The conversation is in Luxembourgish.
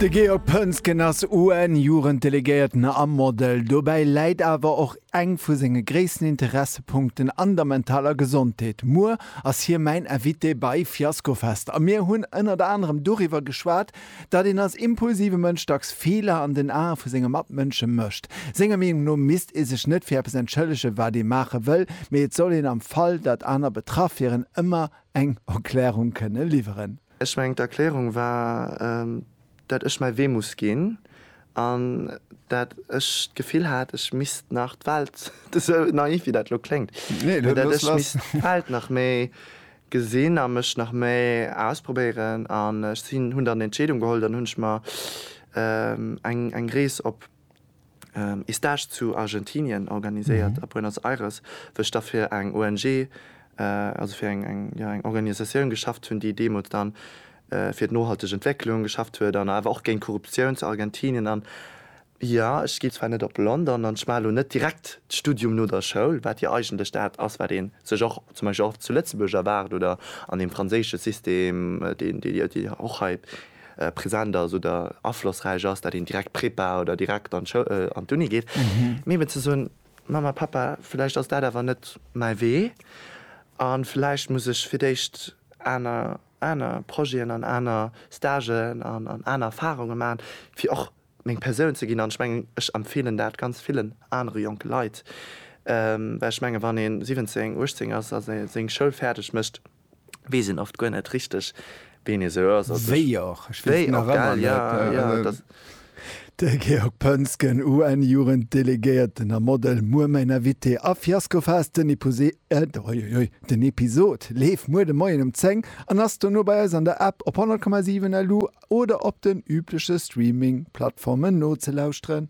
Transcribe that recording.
De Georg Pönsgen ass UN-Jugenddelegéierten a Model. Dobäi läit awer och eng vu senge gréissten Interessepunkten an der mentaler Gesondheet. Muer ass hie mäin Invité bei Fiaskofest a mir hunn ënnert anerem doriwwer geschwat, datt een als impulsive Mënsch dacks Feeler an den Ae vu senge Matmënsche mécht. Senger Meenung no misst ee sech net fir eppes entschëllegen, wat ee maache wëll, mee et soll een am Fall, datt aner betraff wieren, ëmmer eng Erklärung kënne liwweren. Ech mengen d'Erklärung war, dat ech mäi Wee muss ginn an dat ech d'Gefill hat, ech misst nach d'Welt, esou naiv wéi dat elo kléngt, mee dat ech misst d'Welt nach méi gesinn a mech nach méi ausprobéieren. An ech hunn dann d'Entscheedung geholl, dann hunn ech mer eng Rees op. ee Stage zu Argentinien organiséiert, a Buenos Aires, wou ech da fir eng ONG, also fir eng, jo, eng Organisatioun geschafft hunn, déi deemools dann fir d'nohalteg Entwécklung geschafft huet an awer och géint Korruptioun zu Argentinien. An, jo, ech ginn zwar net op London an ech maachen elo net direkt d'Studium no der Schoul, wat jo eigentlech dat ass, wat ee sech och zum Beispill och zu Lëtzebuerg erwaart oder an deem franséische System, deen, déi jo och hei present ass oder aflossräich ass, dat een direkt Prépa oder direkt an d'Uni geet, mee eben ze soen, Mamma, Pappa, vläicht ass dat awer net mäi Wee a vläicht muss ech fir d'éischt aner, aner Projeten an aner Stagen an aner Erfarunge maachen, fir och meng Persoun ze ginn. An ech mengen, ech empfeelen dat ganz villen anere jonke Leit, well ech menge wann ee 17, 18 ass a seng Schoul fäerdeg mécht, wees een oft guer net richteg ween ee sou ass. Wéi och, ech wees nach ëmmer net. De Georg Pönsgen, UN-Jugenddelegéierten a Model, muer mäin Invité a Fiasco Fast. Den Epuse, oiuiui, den Episod leeft muer de Moien um 10 an ass dono bei eis an der App, op 100,7 LU oder op den übleche Streaming-Plattformen nozelauschteren.